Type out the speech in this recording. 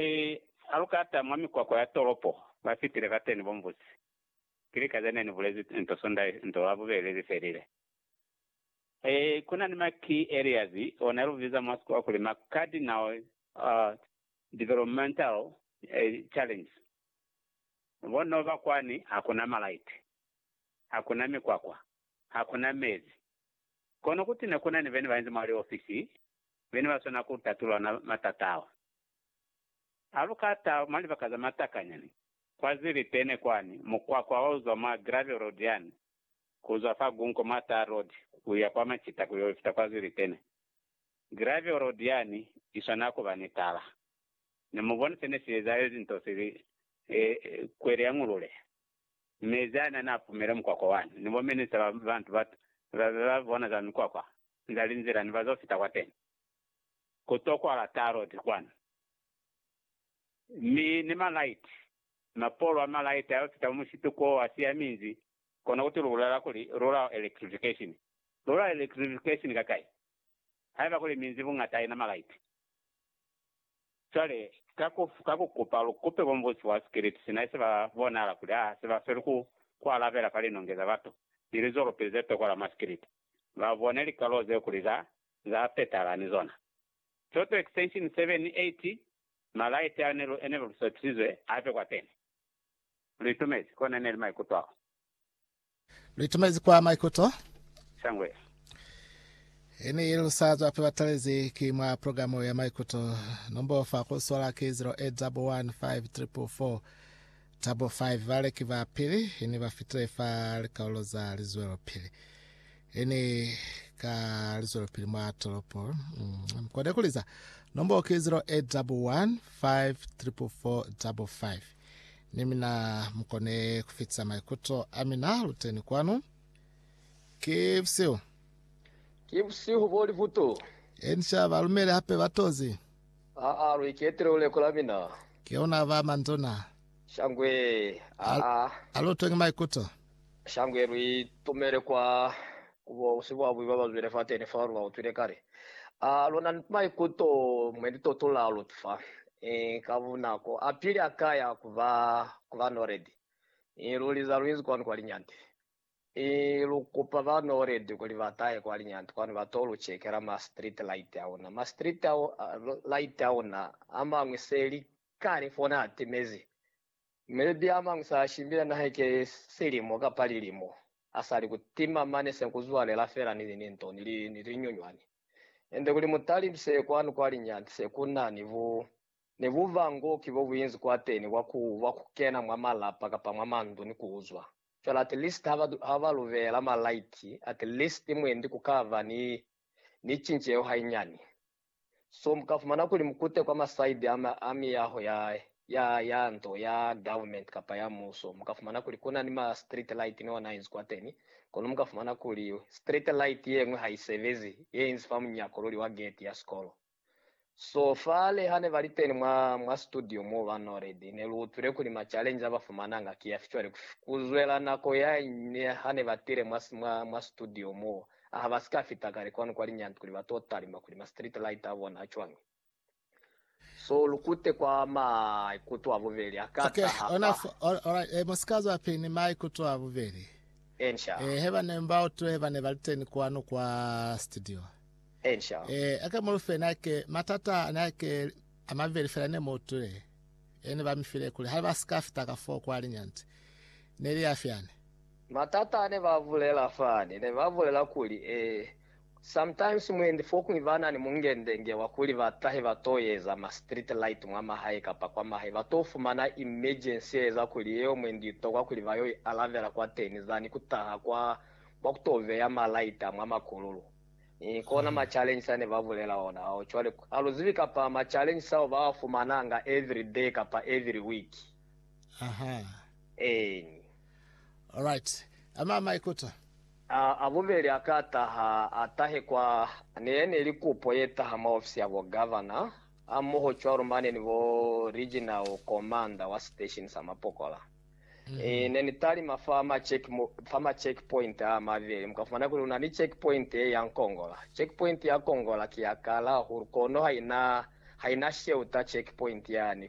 Mi ha lu kata mwa mikwakwa ya tolopo, ba fitile kateni bo mbusi. Ki lika ze ne ni bulezi nto Sunday nto la bubeli li felile. Ee, ku na ni Maki Elias, o ne lu biza mwa sikuwa kuli ma cardinal developmental challenges. Bo no ba kwani, ha ku na malaiti, ha ku na mikwakwa, ha ku na mezi. Kono kuti ne ku na ni be ne ba inzi mwa liofisi, be ne ba swana ku tatula ona matata ao. Ha lu ka ta mwa libaka za matakanya ni KwaZili-Tene kwani, mukwakwa wa uzwa mwa Gravel Road yani, kuzwa fa Gunco mwa Tar Road kuya kwa Machita kuyo ifita KwaZili-Tene, Gravel Road yani iswanela kuba ni tala. Ne mu boni sene si ezahezi nto sili e, kweli ya ngulule. Mezi ani ani a pumile mukwakwa wani, ni bominista ba bantu ba, ba be ba bona za mikwakwa, nzali nzila ni ba zo fita kwateni. ku to kwala tarot kwanu. Mi ni ma light, mapolo a ma light a yo fita mo musituko o a siyaminzi, kono kuti lu bulela kuli, Rural electrification. Rural electrification ka kai? Haiba kuli minzi bungata haina ma light. Cwale, ka ku, ka ku kupa lu kupe bo mubusi wa sikiliti, sina ise ba bonahala kuli ha se ba sweli ku, ku alabela fa linonge za batu ni lizolopili ze to kwala mwa sikiliti, ba bone likalo zeo kuli za za petala ni zona. Toto extension 7 i ti, Ma light ao ne lu ene lu sepisizwe a be kwa pene. Lu itumezi kona ne li maikuto ao. Lu itumezi kwa maikuto. Shangwe ye. I ne lu sa zwa fe batalezi ki mwa progamu ya maikuto. Nombo fa ku sola ki 0811544455. Baleki ba pili ne ba fitile fa likaulo za lizwelopili. He ni ka lizwelopili mwa tolopo, mm, mkone kuliza nombo ki 0811 54455 ni mina mkone kufitisa maikuto a mina luteni kwanu ki busihu Ki busihu bo libuto. enisha balumeli hape batozi Aa, lu iketile luleko la mina. keona ba manduna Shangwe, aa. alutwe ngi maikuto Shango ye lu itumele kwa ku bo sibuabui ba ba zwile fateni fao lu ba utwile kale. A lu na ni maikuto mwe ni tuto la lu fa ii ka bunako apili a ka ya ku ba ku ba Noledi ii lu li za lu inzi kwanu kwa linyante ii lu kupa ba Noledi kuli ba tahe kwa linyante kwanu ba to lu chekela ma street light a una. Ma street light a una amañwi se li kale fona a timezi Melibi amañwi sa shimbila nahe ki silimo kapa lilimo asali ku tima mane se ku zwalela fela ni lininto ni li ni linyunywani. Ende kuli mutalimise kwanu kwa linyani se ku na ni bu ni bubangoki bo buinzi kwateni bwa ku bwa ku kena mwa malapa kapa mwa mandu ni ku uzwa. Fela at least ha ba ha ba lu beela ma light at least mwendi ku ka ba ni ni cinceho hainyani. So mu ka fumana kuli mu kute kwa masaidi a, ma, a miyaho ya, ya, ya nto, ya government kapa ya muso, mu ka fumana kuli ku na ni ma street light ni ona inzi kwateni, kono mu ka fumana kuli street light yeñwi ha i sebezi, ye inzi fa munyako luli wa geti ya sikolo. So fale ha ne ba li teni mwa, mwa situdio moo ba Noledi, ne lu utwile kuli ma challenge a ba fumananga ki yafi cwale ku, ku zwela nako ya ñwi ha ne ba tile mwa, mwa, mwa situdio moo. A ha ba si ka fita kale kwanu kwa linyani kuli ba to talima kuli ma street light a bona a cwañi. So lu kute kwa maikuto a bubeli a ka Okay, taha ona fa. fo, all, alright, eh, mu si ka zwa pili ni maikuto a bubeli. Ensha, Eh, he ba ne mbao tu he ba ne ba li teni kwanu kwa studio. ensha. Eh, ake mu lu fe nake, matata a ne ake a mabeli fela ne mu utwile. Eh, ne ba mi file kuli ha ba si ka fita ka foo kwa linyani. Ne li ya fyani. Matata ne ba bulela fani ne ba bulela kuli, Ee, sometimes mwendi fokuñwi ba na ni mungendenge wa kuli ba tahe ba t'o eza ma street light mwa mahae kapa kwa mahae ba t'o fumana emergency ye eza kuli yeo mwendi i tokwa kuli ba y'o i alavela kwateni zani ku taha kwa kwa ku t'o beya ma light a mwa makululu. Ni kona ma challenges a ne ba bulela ona ao. Cwale, ha lu zibi kapa ma challenges ao ba a fumananga every day kapa every week. Ahaa. Eeni. Alright. A ma maikuto. A a bubeli a ka taha, a tahe kwa ne ya ne li kupo ye taha mwa ofisi ya bo Governor, ha mmoho cwalo mane ni bo Regional Commander wa Station sa Mapokola. E, ne ni talima fa ma check, fa ma check point a mabeli, mu ka fumana kuli kuna ni check point ye ya Nkongola. Check point ya Kongola ki ya kala hahulu, kono ha ina, ha ina shelter check point yani.